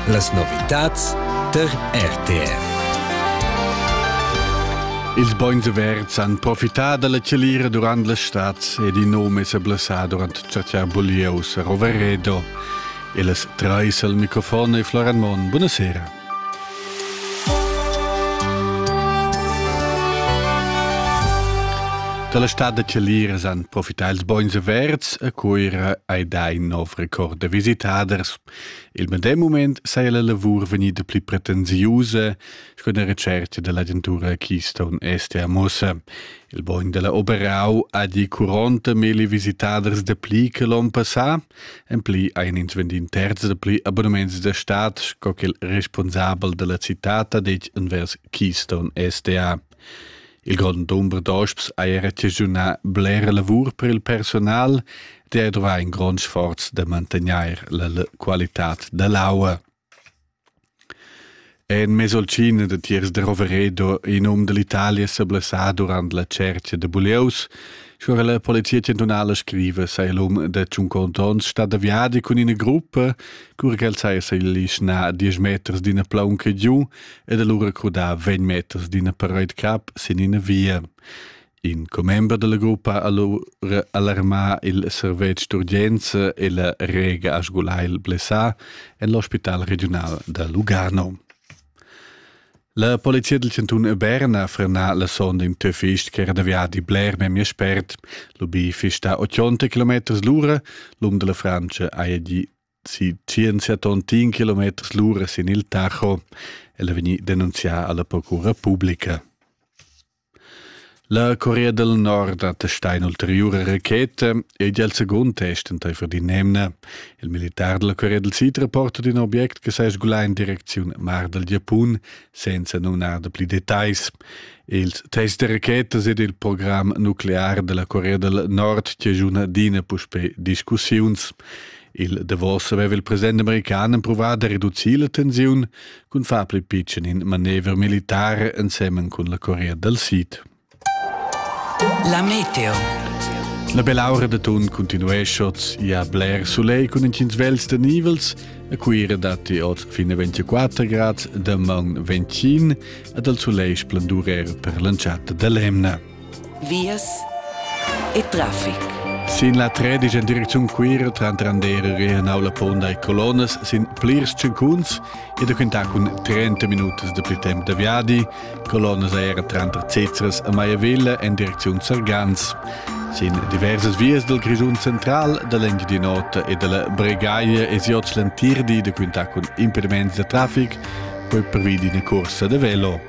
Las novitads tar RTR. Ils bons averts han profità da la chalira durant la stad ed in num è sa blassà durant chatschar bulieus a Roveredo. E las trais al microfon è Floran Mon. Buonasera. Dalla stad da Celiras han profità ils bogns verds a Cuira ei dai nov record da visitaders. Il medem moment saja la lavur vegnida pli pretensiusa, sco una recerca dell'agentura Keystone Est a Mossa. Il bogn della Oberau ha di 40 mili visitaders de pli che l'on passà, En pli ein ins vendin terz da pli abonnements da stad sco ch'il responsabel dalla citad ha detg envers Keystone SDA. Il grond dumber d'osps ha era chaschunà blera lavur per il personal, der dovra in grond sforz da mantegnair la qualitad da l'aua. En mesolcina da tiers da Roveredo, in um dall'Italia seblessà durant la tscherca da bulieus, scuora la Polizia chantunala scriva sai l'um da tschuncont onns stat da viadi cun ina gruppa, cura ch'el saja s'alischnà a diesch meters d'ina plaunca giu ed allura crudà vegn meters d'ina paraid cap sin ina via. In commember dalla gruppa ha lu alarmà il servetsch d'urgenza e la Rega ha sgulà il blessà en l'ospital regiunal da Lugano. La polizia del cantun Berna ha frenà la sonda in töfist ch'era da viadi bler memia spert. L'ubi fista 80 km l'ura, l'um della Francia haja gì si 170 km lura sin il Tacho. El è vegnì denunzià alla Procura Publica. La Corea del Nord attestà un'ulteriore racheta ed è il secondo test entaifer di nemna. Il militar della Corea del Sud rapporta di un obiect che sa sgulà in direzione Mar del Giappone senza nonar da pli detais. Il test de rachetas ed il programm nuclear della Corea del Nord ci giuna dina puspè discussiuns. Il davos aveva il president american empruvà da reducir la tensiun cun far pli pitschen in manevra militare ensemen cun la Corea dal Sid. La meteo. La belaura de tun continueschots ia bler soleil cun incins vels de nivels, a Cuira datti oz fine 24 grad, de man 25 ed al soleil splendurer per l'entschatta de l'emna. vias e traffic. Sin la tredisch en direcziun Cuira tranter Andera e Naula Ponda e Colonas sin plirs cincuns e da quintà cun 30 minutas da pli temp da viadi. Colonas era tranter Cezras e Maiavilla en direcziun Sargans. Sin diversas vias dal Grischun central, da l'Engiadin'Ota e dalla Bregaglia e siots l'entir di da quintà cun impediments da traffic, poi pervi d'ina cursa da velo.